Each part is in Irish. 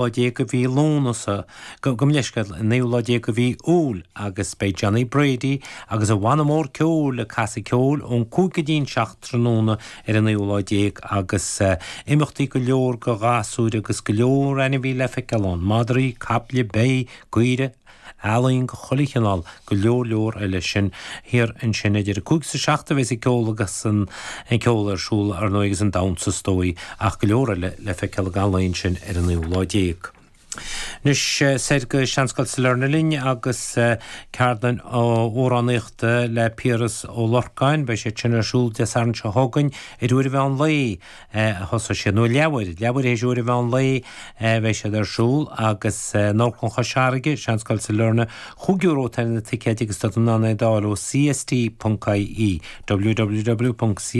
lá déag de mhí Lúnasa, gabhaim leithscéal, an naoú lá déag de mhí Iúil agus beidh Johnny Brady agus a bhanna mór ceoil ag casadh ceoil ón cúig go dtí'n seacht tráthnóna ar an naoú lá déag agus imeachtaí go leor go ghasúir agus go leor ainmhithe le feiceáil ann, madraí, caiple, beithígh, caoirigh. ealaín de chuile chineál, go leor leor eile sin thiar ansin idir 5 is 7 a bheas an ceol agus an ceol ar siúl, ar ndóigh, agus an damhsa is dóigh ach go leor eile le feiceáil i gcaitheamh an lae ansin ar an naoú lá déag. Anois soir go Seanscoil Sailearna linn agus ceardlann amhránaíochta le Piaras Ó Lorcáin, beidh siad sin ar siúl Dé Sathairn seo chugainn, idir uair an mheán lae. a thosós siad, nó leathuair, leathuair théis uair an mheán lae a bheidh siad ar siúl agus in Amharclann Chois Fharraige, Seanscoil Sailearna, cúig euro atá ar na ticéid agus tá tú in ann iad a fháil ó CST.ie, www.cst.ie.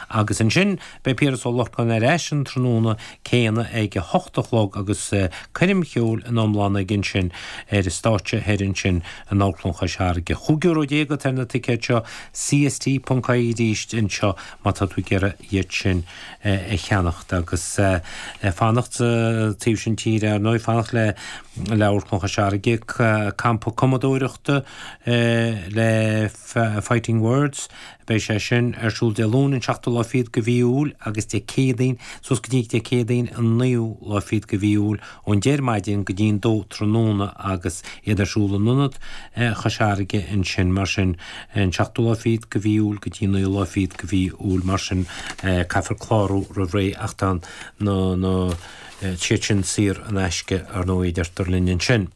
Agus ansin beidh Piaras Ó Lorcáin ar ais an tráthnóna céanna ag a hocht a chlog agus coirm cheoil ina iomláine aige ansin ar an stáitse thoir ansin in Amharclann Chois Fharraige. Chúig euro déag atá ar na ticéid seo, CST.ie arís anseo. má tá tú ag iarraidh iad sin a cheannacht agus fanacht sa taobh sin tíre, ar ndóigh, fanacht le hAmharclann Chois Fharraige, Campa Cumadóireachta le Fighting Words, beidh sé sin ar siúl Dé Luain an 7ú lá fichead de mhí Iúil agus Dé Céadaoin suas go dtí Dé Céadaoin an 9ú lá fichead de mhí Iúil ón deich ar maidin go dtí'n dó tráthnóna agus iad ar siúl in ionad Chois Fharraige ansin mar sin an seachtú lá fichead de mhí Iúil go dtí an naoú lá fichead de mhí Iúil mar sin caithfear clárú roimh ré ach tá na, tá siad sin saor in aisce ar ndóigh a deirtear linn ansin.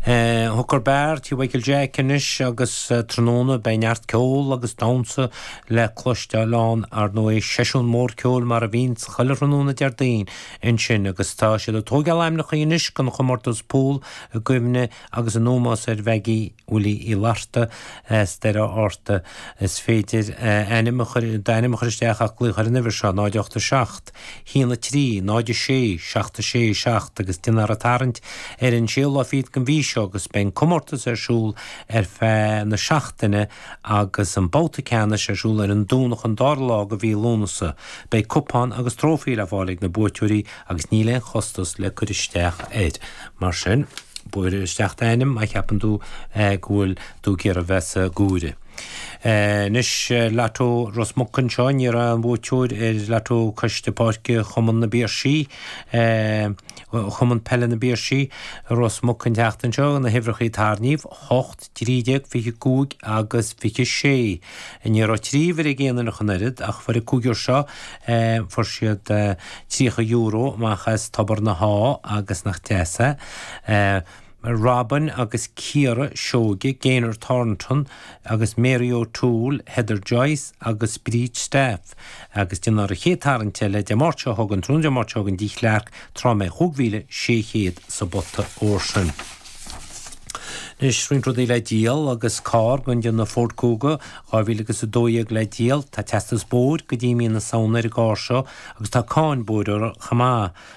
Chuig Beár Tí Mhichael Jack anois agus tráthnóna beidh neart ceoil agus damhsa le cloisteáil ann, ar ndóigh, seisiún mór ceoil mar a bhíonn chuile thráthnóna Déardaoin ansin agus tá siad ag tógáil ainmneacha anois don chomórtas Pool i gcuimhne agus in ómós ar Mheaigí Willie Uí Fhlatharta as Doire Fhatharta. Is féidir d'ainm a chur isteach ach glaoch ar an uimhir seo, 0 8 7. 1, 3, 0, 6, 7, 6, 7, agus déanfar an tarraingt ar an 6ú lá fichead den mhí seo agus beidh an comórtas ar siúl ar feadh na seachtaine agus an babhta ceannais ar siúl ar an Domhnach an 2ú lá de mhí Lúnasa. Beidh cupán agus trófaí le fáil ag na buaiteoirí agus níl aon chostas le cur isteach air. Mar sin, buail isteach d'ainm má cheapann tú go bhfuil tú ag iarraidh bheith sa gCuaire. Anois, Lató Ros Muc anseo, ní raibh aon bhuaiteoir ar Lató Coiste Páirce Chumann na bPiarsaigh, Cumann Peile na bPiarsaigh, Ros Muc an tseachtain seo, na huimhreacha a tarraingíodh, 8, 13, 25 agus 26. Ní raibh trí uimhir ag aon duine ach an oiread ach fuair an cúigear seo, fuair siad €30 amach as Tobar na hÁdh agus nach deas é? Robyn agus Ciara Seoige, Gaynor Thornton agus Mary O'Toole, Heather Joyce agus Bríd Staff, agus déanfar an chéad tarraingt eile Dé Máirt seo chugainn, tráthnóna Dé Máirt seo chugainn Tigh Chlarke, tráth a mbeidh 5600 sa bpota óir sin. Anois roinnt rudaí le díol agus carr den déanamh Ford Kuga 2000 agus 12 le díol. Tá teastas bóthair go dtí mí na Samhna ar an gcarr seo agus tá cáin bóthair uirthi chomh maith.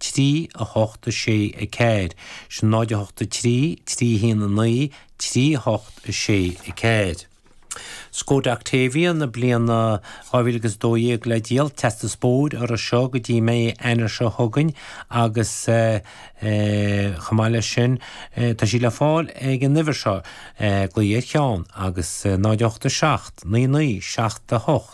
trí, a hocht, a sé, a ceathair, sin náid a hocht, a trí, trí haon, a naoi, trí, a hocht, a sé, a ceathair. Skoda Octavia na bliana dhá mhíle agus a dó dhéag le díol, teastas bóthair uirthi seo go dtí mí Eanáir seo chugainn agus chomh maith leis sin tá sí le fáil ag an uimhir seo, Glaoigh ar Sheán agus náid a hocht, a seacht, naoi, naoi, seacht, a hocht.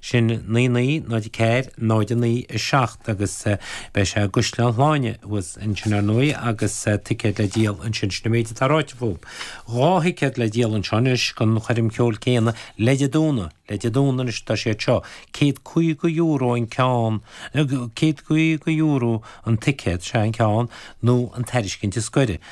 Sin naoi naoi, náid a ceathair, náid a naoi, a seacht agus beidh sé i gCaisleán Shláine thuas ansin, ar ndóigh, agus ticéid le díol ansin. Sin an méid atá ráite fúm. Dhá thicéad le díol anseo anois don choirm cheoil céanna, le haghaidh Dé Domhnaigh, le haghaidh Dé Domhnaigh anois, tá siad seo, céad caoga euro an ceann, céad caoga euro an ticéad, sea, an ceann, nó an tairiscint is gaire.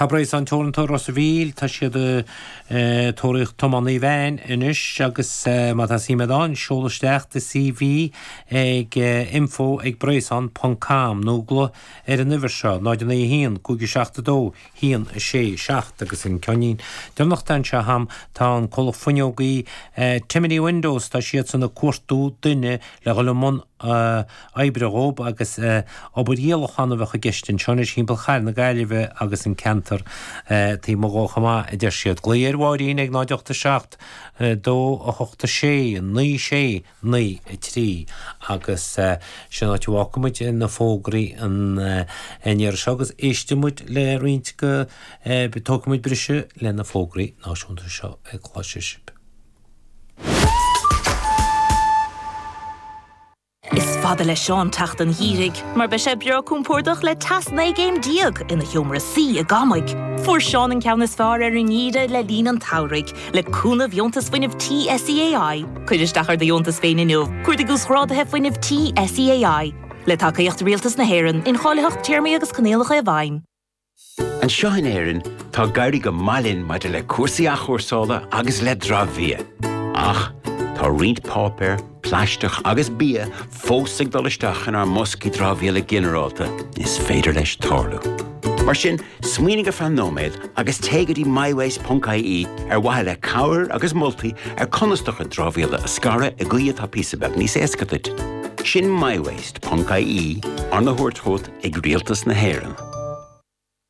Tá Breizon Teoranta Ros an Mhíl, tá siad ag tóraíocht tiománaí veain anois agus má tá suim agat ann, seol isteach do CV ag info@breizon.com nó glaoigh ar an uimhir seo, 091 572 167 agus an ceainnín deireanach atá anseo agam, tá an Comhlacht Fuinneogaí Timoney Windows, tá siadsan ag cuartú duine le dhul i mbun oibre dhóibh agus obair dhíolacháin a bheadh i gceist anseo anois thimpeall chathair na Gaillimhe agus an ceantar taobh amuigh dhó chomh maith, a deir siad. Glaoigh ar Mháirín ag 0 8 7 2 8 6 9 6 9 3 agus sin áit a bhfágfaidh muid na fógraí an iarraidh seo agus éistfidh muid le roinnt go dtógfaidh muid briseadh le na fógraí náisiúnta seo a chloisfidh sibh. Is fada le Seán teacht an gheimhridh mar beidh sé breá compordach le teas 19 gcéim ina sheomra suí i gCamaigh. Fuair Seán an ceann is fearr ar an ngeimhreadh le linn an tsamhraidh le cúnamh Dheontas Fuinnimh Tí SEAI. Cuir isteach ar do dheontas féin inniu, cuardaigh Uasghráduithe Fuinnimh Tí SEAI. Le tacaíocht Rialtas na hÉireann, incháilitheacht, téarmaí agus coinníollacha i bhfeidhm. Anseo in Éirinn, tá ag éirí go maith linn maidir le cúrsaí athchúrsála agus le dramhbhia, ach tá roinnt páipéir, plaisteach agus bia fós ag dul isteach inár mboscaí dramhaíola ginearálta, is féidir leis tarlú. Mar sin, smaoinigh ar feadh nóiméad agus téigh go dtí mywaste.ie ar mhaithe le cabhair agus moltaí ar conas do chuid dramhaíola a scaradh i gcaoi atá píosa beag níos éasca duit. Sin mywaste.ie, arna thabhairt chugat ag Rialtas na hÉireann.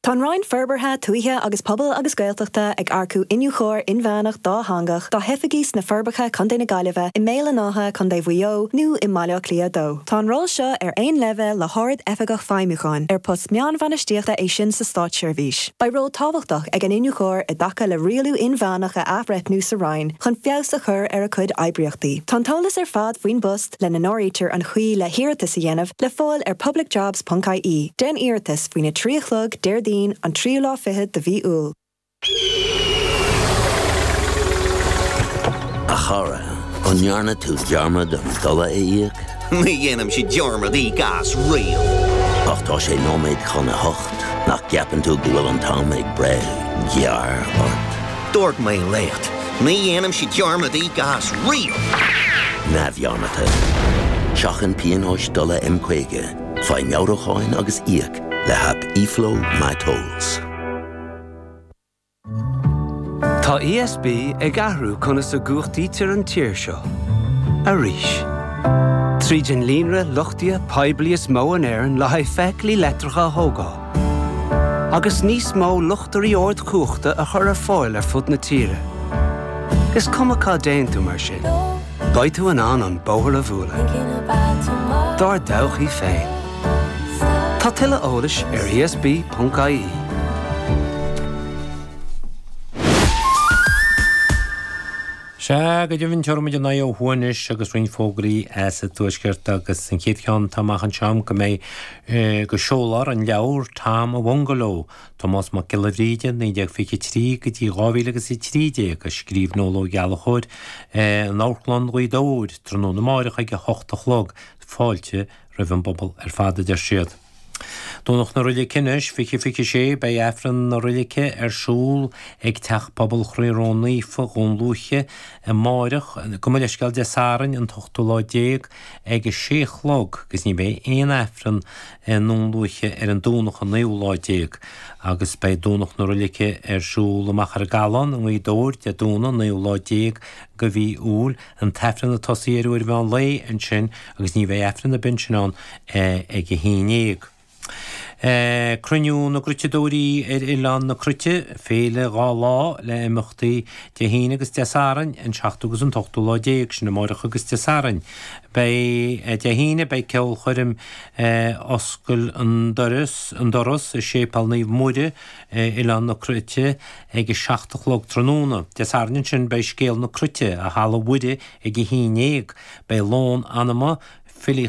Tá an Roinn Forbartha Tuaithe agus Pobail agus Gaeltachta ag earcú Iniúchóir Inmheánach Dátheangach dá hoifigí sna Forbacha, Co. na Gaillimhe, i mBéal an Átha, Co. Mhaigh Eo, nó i mBaile Átha Cliath 2. Tá an ról seo ar aon leibhéal le hArd-Oifigeach Feidhmiúcháin, ar post meánbhainistíochta é sin sa Státseirbhís. Beidh ról tábhachtach ag an Iniúchóir i dtaca le rialú inmheánach a athbhreithniú sa Roinn chun feabhas a chur ar a cuid oibríochtaí. Tá an t-eolas ar fad faoin bpost, lena n-áirítear an chaoi le hiarratas a dhéanamh, le fáil ar publicjobs ponc IE. Déan iarratas faoina 3 a chlog Déardaoin an tríú lá fichead de mhí Iúil. A chara, an ndearna tú dearmad an dola a íoc? Ní dhéanaimse dearmad íoc as riamh. Ach tá sé nóiméad chun a hocht, nach gceapann tú go bhfuil an t-am ag breith gearr ort? Dúirt mé leat, ní dhéanaimse dearmad íoc as riamh! neamhdhearmadta. Seachain pionóis dola M50, faigh meabhrúcháin agus íoc le haip eFlow My Tolls. Tá ESB ag athrú conas a gcumhachtaítear an tír seo. Arís. Tríd an líonra luchtaithe poiblí is mó in Éirinn le haghaidh feithiclí leictreacha a thógáil, agus níos mó luchtairí ardchumhachta a chur ar fáil ar fud na tíre. Is cuma cá dtéann tú mar sin, beidh tú in ann an bóthar a bhualadh dár dtodhchaí féin. Tá tuilleadh eolais ar ESB.ie. Sea, go deimhin tabharfaidh muid ár n-aghaidh ó thuaidh anois agus roinnt fógraí as an Tuaisceart agus an chéad cheann atá amach anseo go mbeidh go seolfar an leabhar Tom a Bhungalow, Tomás Mac Giolla Bhríde 1923 go dtí 2013, a scríobh Noel Ó Gallchóir in Amharclann Ghaoth Dobhair tráthnóna amárach ag 8 a chlog, fáilte roimh an bpobal ar fad a deir siad. Domhnach na Roilige anois 2026 Beidh Aifreann na Roilige ar siúl ag Teach Pobail Chroí Ró Naofa, Dhún Lúiche, amárach, gabh mo leithscéal Dé Sathairn an t-ochtú lá déag, ag a sé a chlog agus ní bheidh aon Aifreann i nDún Lúiche ar an Domhnach an naoú lá déag agus beidh Domhnach na Roilige ar siúl i Machaire Gathlán i nGaoth Dobhair Dé Domhnaigh an naoú lá déag de mhí Iúil an tAifreann ag tosú ar uair mheán lae ansin agus ní bheidh Aifreann ar bith ansin ann ag a haon dhéag. Cruinniú na gCruiteadóirí ar Oileán na Cruite, féile dhá lá le imeachtaí Dé hAoine agus Dé Sathairn, an seachtú agus an t-ochtú lá déag sin amárach agus Dé Sathairn. Beidh Dé hAoine beidh ceolchoirm Oscail an Doras i Séipéal Naomh Muire ar Oileán na Cruite ag a seacht a chlog tráthnóna. Dé Sathairn ansin beidh Scéal na Cruite i Halla Mhuire ag a haon dhéag. Beidh lón anama, filíocht.